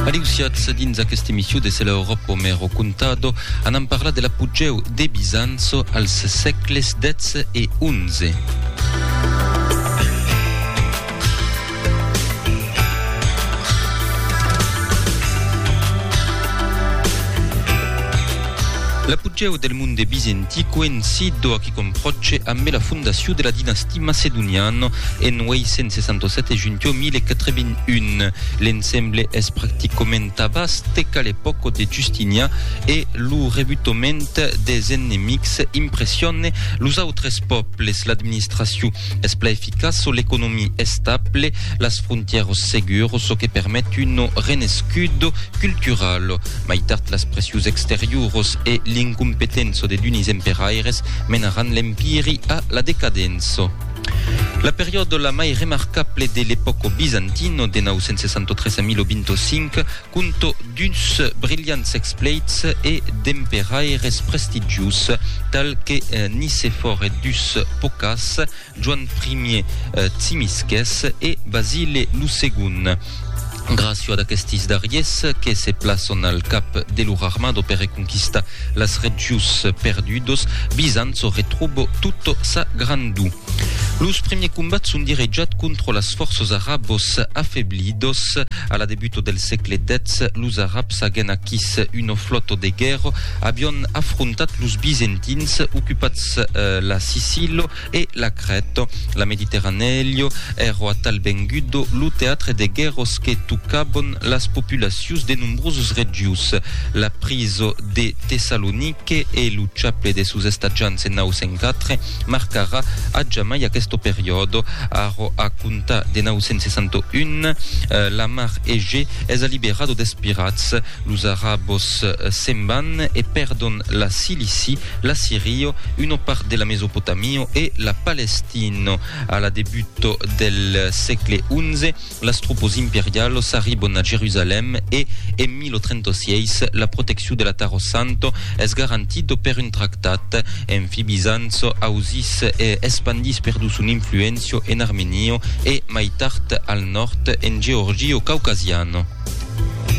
Adiu siatz dins aquesta emissió de Se la Europa me ho contado. Anam parlar de l'apogeu de Bizanço als sègles xii e xi. L'apogeu del monde bizentic coïncid donc com pròche ambe la fondacion de la dinastia macedoniana en 867 e juntiò 1081. L'ensemble es practicament tabàs teca l'epòca de Justinian e lo rebutament des enemics impressione los autres pòbles. L'administracion es plan eficaç, l'economia estable, las frontièras seguras, çò que permet un renescut cultural. Mai tard las pressius exteriuros e l'incompetenço de d'unis emperaires menaràn l'Empiri a la decadenço. La periòda la mai remarcable de l'epòco bizantino de 963 a 1025 conto d'uns brilhants expleits e d'emperaires prestigius tal que Nicefòre dus Pocas, Joan Ier Tsimisces e Basile lo Segond. Gràcia d'aquestis darriers que se plaçon al cap de lor armado per reconquistar las regions perdudos, Bizanço retrobo tota sa grandor. Los premiers combats son direjats contra las fòrças arabos afeblidos. A la debuta del sègle X, los arabs agen aquís una flòta de guèrra, avián afrontat los bizentins, ocupats la Sicila E la crèt, la Mediterranèlho, èro atal vengudo lo teatre de guèrros que tocabon las populacions de nombrosos regius. La priso de Tessalonique e lo chaple de sos estatjants en 904 marcarà a jamai aqueste periòde. Arro a comptar de 961, la mar Egè es alliberado des pirats, los arabos se'n van e pèrdon la Cilici la Sirio, una part de la Mesopotamio e la Palestina. A la debut del sègle XI, las tropas imperialas arribon a Jerusalèm e, en 1036, la proteccion de la Taro Santa es garantida per un tractat. Enfi, Bizanç ausís e espandís perdu son influéncia en Armenia e, mai tard, al nòrd, en Georgia caucasiana.